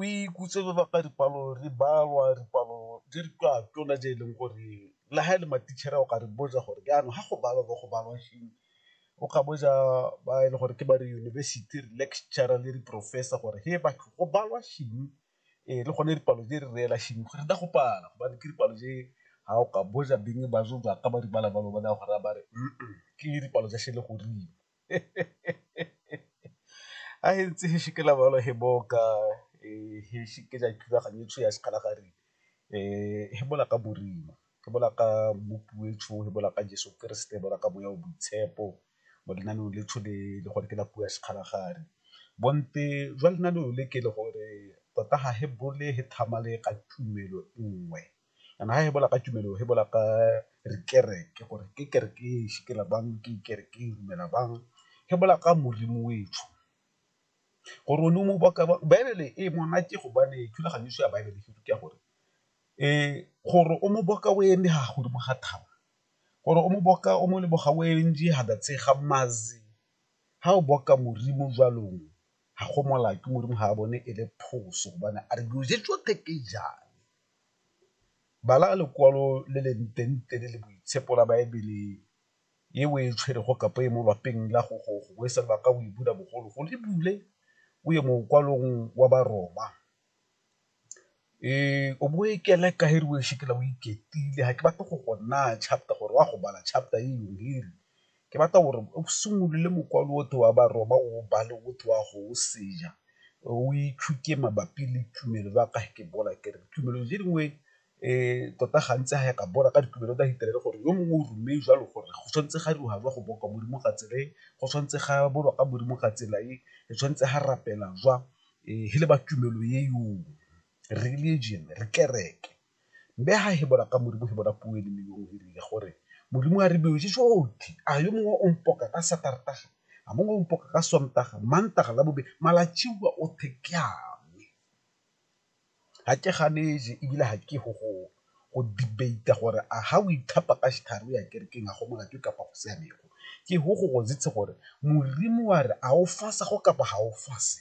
o ikutse re baka dipalo re balwa dipalo di re ka tsona tse e leng gore le ha e le matitšhere o ka re botsa gore jaanong ga go balwa bo go balwa eng, o ka botsa ba e le gore ke ba re yunibesithi re lecturer le di-professor gore he batho go balwa eng le gone dipalo di re reela eng gore go pala gobane ke dipalo tse ga o ka botsa beng ba ka ba di bala jalo ba naya go raya ba re ke dipalo tsa sele goreng. a e ntse gešo ke labalo he boka gešo ke ja thulaganyo tšho ya sekgala gare he bola ka borima ke bola ka mmopi we tšho he bola ka jeso keresete bola ka moya o boitshepo mo lenaneo le tšho le le gore ke la puo ya sekgala gare bonte jwa lenaneo le ke le gore tota ga he bole he tlhamale ka tumelo nngwe. And ha e bola ka tumelo e bola ka re kereke gore ke kereke e shikela bang ke kereke e dumela bang e bola ka Modimo o etsho gore o ne o mo baka ba baebele e monate gobane thulaganyo ya baebele ke rute gore gore o mo boka o eme ha godimo ga thaba gore o mo boka o mo leboga o ntse ha ba tshega mazi ha o boka Modimo jwalong ha go molato Modimo ha bone e le phoso gobane a re dilo tse tsotlhe ke jang. Bala lekwalo le le ntenete le le boitshepo la Baebele e o e tshwerego kapa e mo lwapeng la gogo gongwe se lebaka o e bula bogologolo, e bule o ye mokwalong wa Baroma o bo o e keleka e re o e ga ke batle go go naya chapter gore wa go bala chapter e . Ke batla gore o simolole mokwalo otlhe wa Baroma o o bale o tle o a go o seja, o ithuta mabapi le tumelo ba ka ke bola ke re tumelo tse dingwe tota gantsi ga ya ka bola ka ditumelo tsa Hitler gore yo mongwe o ruile jalo gore go tshwanetse ga dira jwa go boa kwa Modimo ka tsela e, go tshwanetse ga bolwa ka Modimo ka tsela e, re tshwanetse ga rapela jwa, e le ba tumelo e , religion, kereke. Mme ha hebola ka Modimo, hebola puo e le nngwe yo o hirile gore, Modimo a re dioje jotlhe, a yo mongwe o mpoka ka Satartaga, a mongwe o mpoka ka Sontaga, Mantaga, Labobedi, malatsiwa othe ke a me. Ga ke ganeje ebile ga ke go go go debate-a gore a ha o ithapa ka setlhare o ya kerekeng a go molato kapa go siamego, ke go go gore Modimo wa re a o fasa go kapa ga o fase.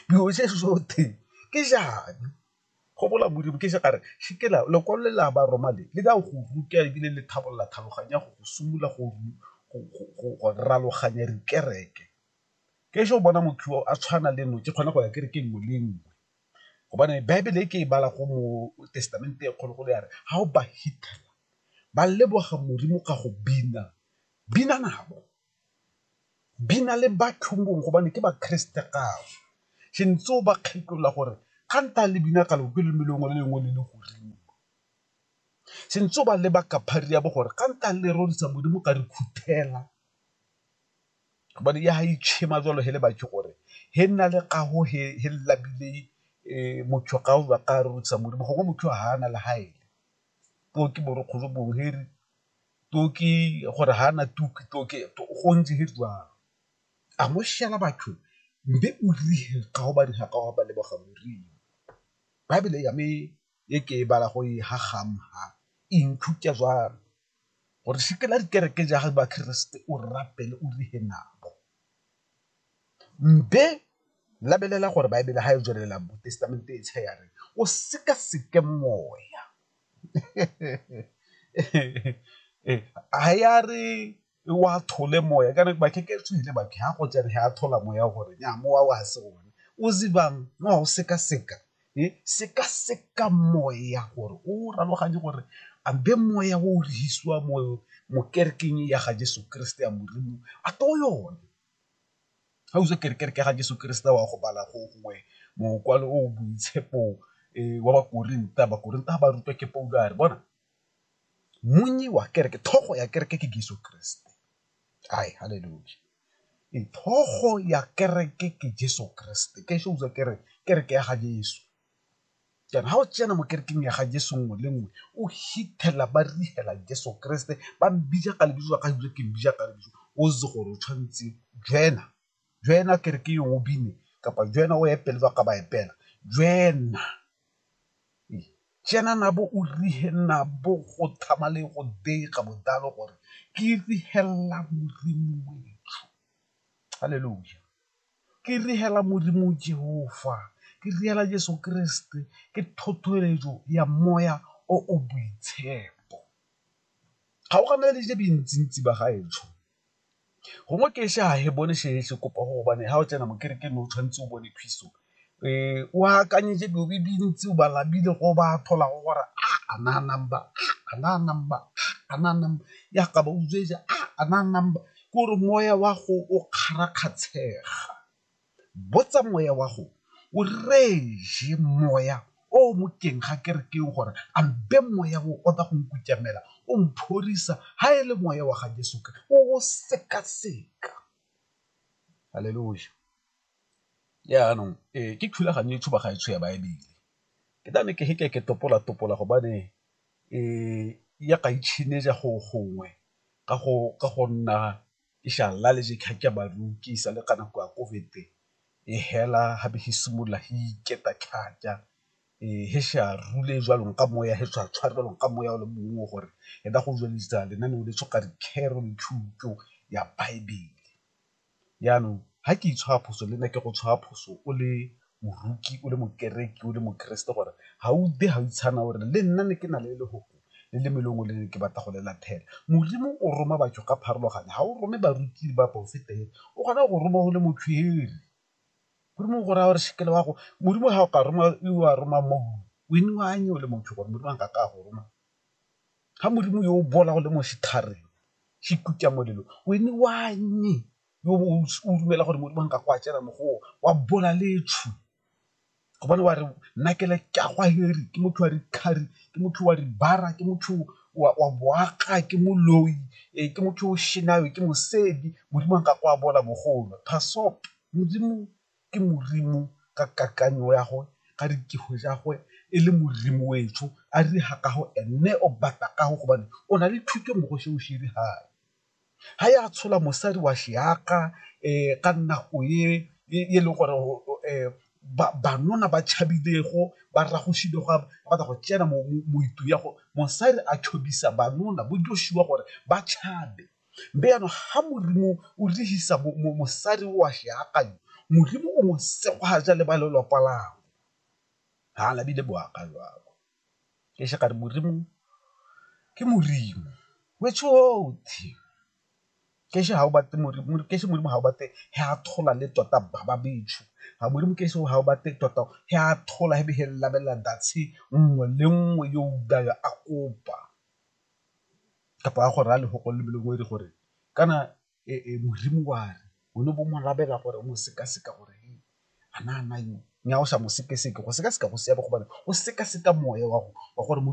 dilo tse sote ke jane go bola modimo ke sekare sekela lekwalo le la ba roma le le ka go ruta ebile le tlhabolola tlhaloganya go go simolola go raloganya dikereke ke so bona motho o a tshwana le nno ke kgone go ya kereke nngwe le nngwe gobane baebele e ke e bala go mo testamente e kgologolo ya re ga o ba hitela ba leboga modimo ka go bina bina nabo di na le batho gobane ke bakriste gao se ntse o ba kgetholla gore ga nta le bina ka loke le melongwe le lengwe le le godimo se ntse o ba leba ka phari ya bo gore ga nta le rorisa modimo ka re khuthela gobane ya ga itšhema jalo he le batho gore he nna le kago he labile um motho ga o ba ka rorisa modimo gongwe motho ga ana le gaele poo ke borokgolo bongwe he re toki gore ga na tuki toki go ntse ge jalo a mo šala batho mbe o rile ga go bane ga ka wa ba leboga morimo bible ya me e ke e bala go e ha gamha e nthuta jalo gore se ke la dikereke ja ba kriste o rapele o rile nabo mbe labelela gore bible ga e tswelela mo testamente e tshe ya re o seka seke moya ha ya re wa thole moya ka nako bakhe ke tswile bakhe ha go tsene ha thola moya gore nya mowa wa se one o zibang no o seka seka e seka seka moya gore o raloganye gore a be moya o rehisiwa mo mo kerekeng ya ga Jesu Kriste ya Modimo a to yone Ga o itse gore kereke ga Jeso Keresete wa go bala gongwe mokwalo o boitshepo wa ba Korinta, ba Korinta ba rutwa ke Paulo a re bona monnye wa kereke, tlhogo ya kereke ke Jeso Keresete. Haleluya, tlhogo ya kereke ke Jeso Keresete, ke shows-a kere kereke ya ga Jeso. jaana ga o tsena mo kerekeng ya ga jeso nngwe le nngwe o hithelela ba rigela jeso keresete ba mbija ka lebitso la ka ebile ke mbija ka lebitso o itse gore o tshwanetse jena jena kereke yo o bine kapa jena o epele ba ka ba epela jena jena nabo o rihe nabo go thama le go dega bodalo gore ke rihelela modimo wetsho halleluja Ke riela Modimo Jehofa, ke riela Jesu Keresete, ke thothoeletso ya moya o o boitshepo. Kgaoganeditse bentsi-ntsi ba gaetsho, gongwe ke ise ga he bone se se kopa go gobane ga o tsena mo kerekeng o tshwanetse o bone phiso o akanyetse dilo di le dintsi o bala bile go ba tlhola go gore a a na number a na number a na number ya ka ba utswe ja a na number ke gore moya wa go o kgarakgatshega botsa moya wa go o reje moya o mo teng ga ke re ke gore a mpe moya o o tla go nkutamela o mphorisa ha e le moya wa ga Jesu o o sekaseka haleluya Jaanong ee ke thulaganyo e tshuba ga e tsho ya Baebele, ke na le ke ge ke ke topola-topola gobane e ya ga itšhenyetsa go gongwe ka go nna ke sa lale ke sa le ka nako ya COVID e hela ga be e simolola e iketa thata e ge sa rule jwalo ka moya ge sa tshware jwalo ka moya o le mongwe gore e ka go tsweletsa lenaneo le le thuto ya Baebele. Jaanong, ga ke itshwara phoso, le nna ke go tshwara phoso o le moroki, o le mokereki, o le mokeresete gore ga o utlwe ga o itshana o re le nna ne ke na le lefoko le le mo e leng gore le ne ke batla go le latlhela. Modimo o roma batho ka pharologano, ga o rome baruti le baporofeta fela, o kgona go go roma o le motshweu. Modimo o go raya gore sekele wa go, Modimo ga o ka roma, o a roma o le motho gore Modimo a nkake a go roma. Ga Modimo yo o boolago le mo setlhareng se ikutswa molelo, wene wa nnye yo o bong o dumela gore Modimo a nka go a tsena mo go o, wa boola le etsho gobane wa re nna ke le ke a go a heri, ke motho wa dikhari, ke motho wa dibara, ke motho wa boaga, ke moloi, ee ke motho o shenang, ke mosedi, Modimo a nka go a boola mo go o. Modimo ke Modimo ka kakanyo ya gwe ka ditiro tsa gwe e le Modimo wetsho a dira ka go ene o batla ka go gobane o na le thuto mo go seo se dirang ga ya tshola mosadi wa seaka um ka nako e e leng gore um banna ba tšhabilego ba ragositse go batla go tsena mo ya go mosadi a banna bo Joshua gore ba tšhabe. Mme jaanong ga Modimo o dirisa mosadi o a seakanyo, Modimo o mo sekgwaja le ba lelwapa lagwe. Ga la bile boaka jalo. Ke se ka re Modimo ke Modimo, which gote ke se Modimo ga o batle ge a thola le tota ba ba betsho, ga Modimo ke se ga o batle tota ge a thola ge be ge lebelela ntshe nngwe le nngwe yo a kopa. kapa a go raya lefoko le le lengwe gore kana modimo wa re o ne bo mo rabela gore o mo sekaseka gore a na nna yo mme ga o sa mo sekaseka go sekaseka go siame gobane o sekaseka moya wa gore .